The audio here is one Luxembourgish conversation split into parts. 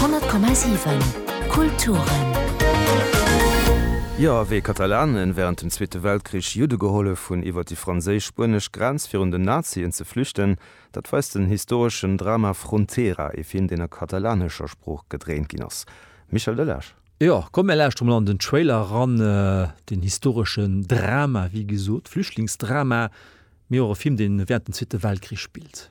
100,7 Kulturen. Jo, wéi Katalanen während dem Zweete Weltkrich Judde gehollef hunn iwwer déi franséisch-spuenesch Grenz virun den Nazien ze flüchten, dat weist den historeschen Drama Frontera, ee Film deen a katalanescher Sprooch gedréint ginn ass. Michel Delage. Jo, komm mir lauschteren mol an den Trailer eran, den historeschen Drama, wéi gesot Flüchtlingsdrama, Mee och e Film, dee während dem Zweete Weltkrich spillt.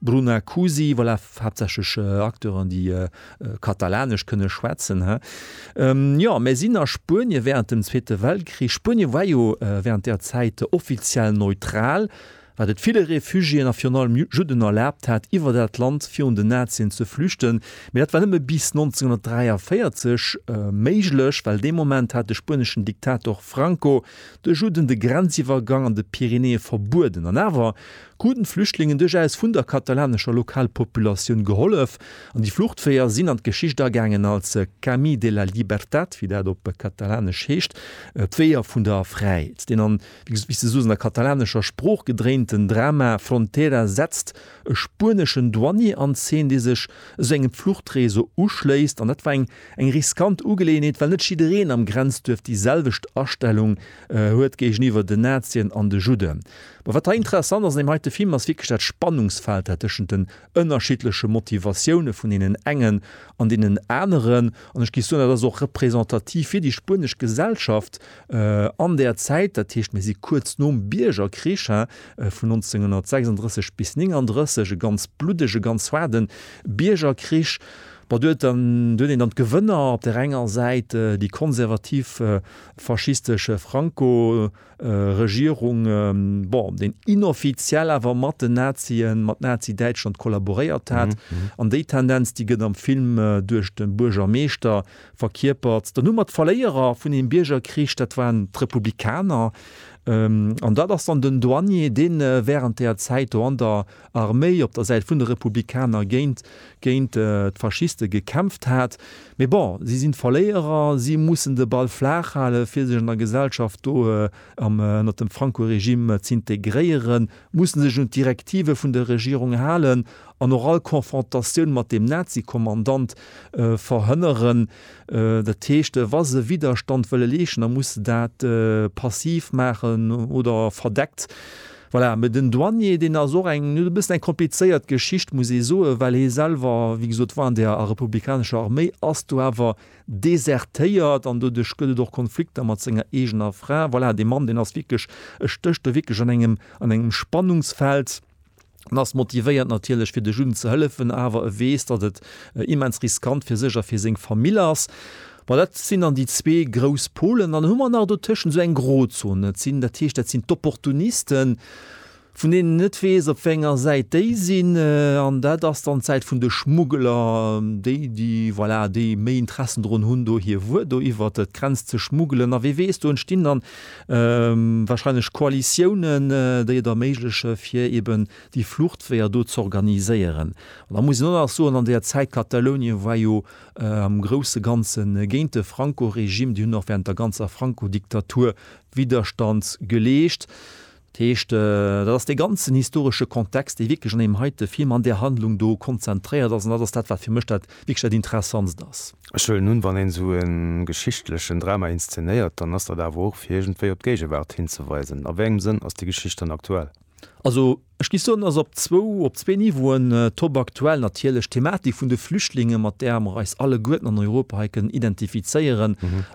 Bruna Cusi, Voilà, haaptsächlech Acteuren, déi Katalanesch kënne schwätzen, he? Jo, mär sinn a Spuenie wärend dem Zweete Weltkrich. Spuenie war jo wärend där Zäit offiziell neutral, wat et ville Refugiéen a virun allem Judden erlaabt hat, iwwer dat Land virun den Nazien ze flüchten. Mee dat war nëmme bis 1943 méiglech, well dee Moment hat de spueneschen Diktator Franco de Judden de Grenziwwergang an de Pyrenäe verbueden. An awer Kruten d'Flüchtlingen duerchaus vun der katalanescher Lokalpopulatioun gehollef, an déi Fluchtweeër sinn an d'Geschicht agaangen als Camí de la Llibertat, wéi dat op Katalanesch heescht, d'Weeër vun der Fräiheet. Deen an, wéi se soss, an der katalanescher Sprooch gedréinten Drama Frontera setzt e spueneschen Douanier an Zeen, dee sech esou engem Fluchtreseau uschléisst. An dat war eng riskant Ugeleeënheet, well net jiddereen am Grenzduerf déi selwecht Astellung huet géigeniwwer den Nazien an de Judden. Mä wat hei interessant ass an deem heite Film, ass wierklech dat Spannungsfeld dat tëschent den ënnerschiddleche Motivatioune vun deenen engen an deenen aneren, an ech géif soen, dat ass och representativ fir déi spuenesch Gesellschaft an där Zäit, dat heescht mir si kuerz nom Biergerkrich, vun 1936 bis 1939, e ganz bluddege, ganz haarde Biergerkrich. Bon, do huet dann, do huet een dann d'Gewënner, op där enger Säit déi konservativ faschistesch Franco. Regierung, bon, deen inoffiziell awer mat den Nazien, mat Nazi-Däitschland kollaboréiert hat. An déi Tendenz, déi gëtt am Film duerch de Buergermeeschter verkierpert. Dann hu mer d'Verléierer vun deem Biergerkrich, dat waren d'Republikaner. An dat ass dann den Douanier, deen wärend där Zäit do an der. Arméi op der Säit vun de Republikaner géint géint d'Faschiste gekämpft hat. Mee bon, si sinn d'Verléierer, si mussen de Ball flaach halen, fir sech an der Gesellschaft do am ënnert dem Franco-Regime z'integréieren, mussen sech un d'Direktive vun der Regierung halen an och all Konfrontatioun mat deem Nazi-Kommandant verhënneren. Dat heescht, wa se Widerstand wëlle leeschten, da musse se dat passiv maachen oder verdeckt. Voilà, mä den Douanier, deen ass och eng, e bëssen eng komplizéiert Geschicht, muss ee soen, well hie selwer, wéi gesot, war an där republikanescher Arméi, ass do awer desertéiert an doduerch gëtt et och Konflikter mat senger eegener Fra. Voilà, dee Mann, deen ass wierklech, e stécht do wierklech an engem, an engem Spannungsfeld an ass motivéiert natierlech, fir de Juden ze hëllefen, awer e weess, datt et immens riskant fir sech a fir seng Famill ass. Bon, dat sinn dann déi zwee grouss Polen. Dann hu mer nach dotëschent esou eng Grozon. Dat sinn, dat heescht, dat sinn d'Opportunisten, vun deenen een net weess, op wéi enger Säit déi sinn. An dat ass dann d'Säit vun de Schmuggeler, déi, déi, voilà, déi méi Interessen drun hunn, do hir Wuer do iwwer d'Grenz ze schmuggelen. A wie weess, do entstinn dann warscheinlech Koalitiounen, déi et erméiglechen, fir eben déi Fluchtweeër do z'organiséieren. An da muss een och nach soen, an där Zäit Katalounien war jo am grousse Ganze géint de Franco-Regime, déi hunn och während der ganzer Franco-Diktatur Widderstand geleescht. Dat heescht, dat ass dee ganzen historesche Kontext, dee wierklech an deem heite Film, an där Handlung do konzentréiert ass, an dat ass dat, wat fir mech dat wierklech dat Interessantst ass. Ech huelen un, wann een esou e geschichtlechen Drama inszenéiert, dann ass dat awer och, fir iergendwéi op d'Géigewaart hinzeweisen. A wéi engem Sënn ass déi Geschicht dann aktuell? Also. Ech géif soen, dass op zwou, op zwee Niveauen topaktuell natierlech d'Thematik vun de Flüchtlinge, mat där mer eis alleguerten an Europa hei kënnen identifizéieren,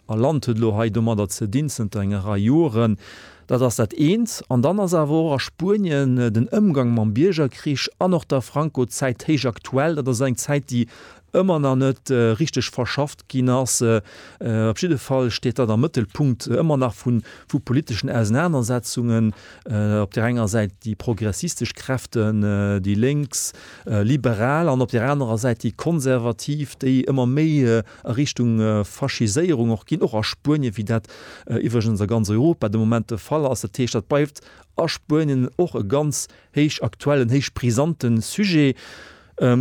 a Land huet elo hei domadder ze dinn zënter enger Rei Joren, dat ass dat eent. An dann ass awer och a Spuenien den Ëmgang mam Biergerkrich an och der Franco-Zäit héich aktuell. Dat ass eng Zäit, déi ëmmer nach net richteg verschafft ginn ass. Op jidde Fall steet dat am Mëttelpunkt ëmmer nach vu politeschen Ausenanersetzungen. Op där enger Säit déi progressistesch Kräften, déi Lénks, Liberal, an op där anerer Säit déi Konservativ, déi ëmmer méi a Richtung Faschiséierung och ginn, och a Spuenien, wéi dat iwwregens a ganz Europa de Moment de Fall ass. Dat heescht, dat bleift a Spuenien och e ganz héich aktuellen, héich brisante Sujet.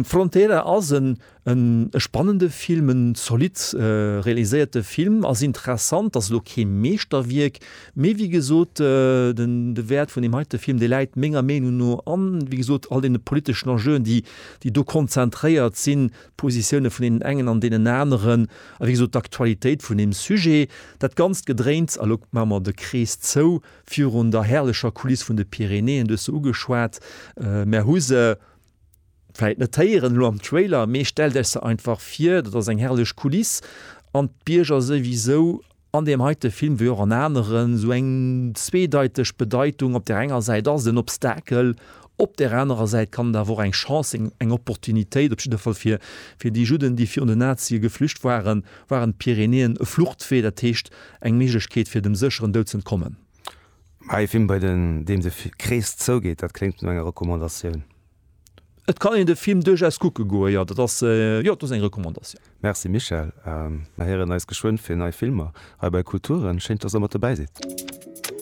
Frontera ass en e spannende Film, en zolidd realiséierte Film, ass interessant, ass elo kee Meeschterwierk, mee wéi gesot de Wäert vun deem heite Film, dee läit menger Meenung no an, wéi gesot, all deene politeschen Enjeuen, déi do konzentréiert sinn, d'Positioune vun deenen engen an deenen aneren a wéi gesot d'Aktualitéit vun deem Sujet. Dat ganzt Gedréints, elo maache mer de Krees zou, virun der herrlecher Kuliss vun de Pyrenäen, du hues se ugeschwat, mer hu se, vläit net héieren elo am Trailer, mee stellt Iech se einfach vir, dat ass eng herrlech Kuliss an d'Bierger souwisou an deem heite Film wéi och an aneren esou eng zweedeiteg Bedeitung, op där enger Säit ass et en Obstakel, op där anerer Säit kann et awer och eng Chance sinn, eng Opportunitéit, op jidde Fall fir déi Judden, déi virun den Nazie geflücht waren, waren d'Pyrenäen e Fluchtwee, dat heescht eng Méiglechkeet fir dem sécheren Doud z'entkommen. Mä ee Film, bei deem de Krees zougeet, dat kléngt no enger Recommandatioun. Et kann een de Film duerchaus kucke goen, jo. Dat ass, jo, dat ass eng Recommandatioun. Merci Michèle. Mer héieren eis geschwënn fir nei Filmer hei bei Kulturen. Schéin, dass Der mat dobäi sidd.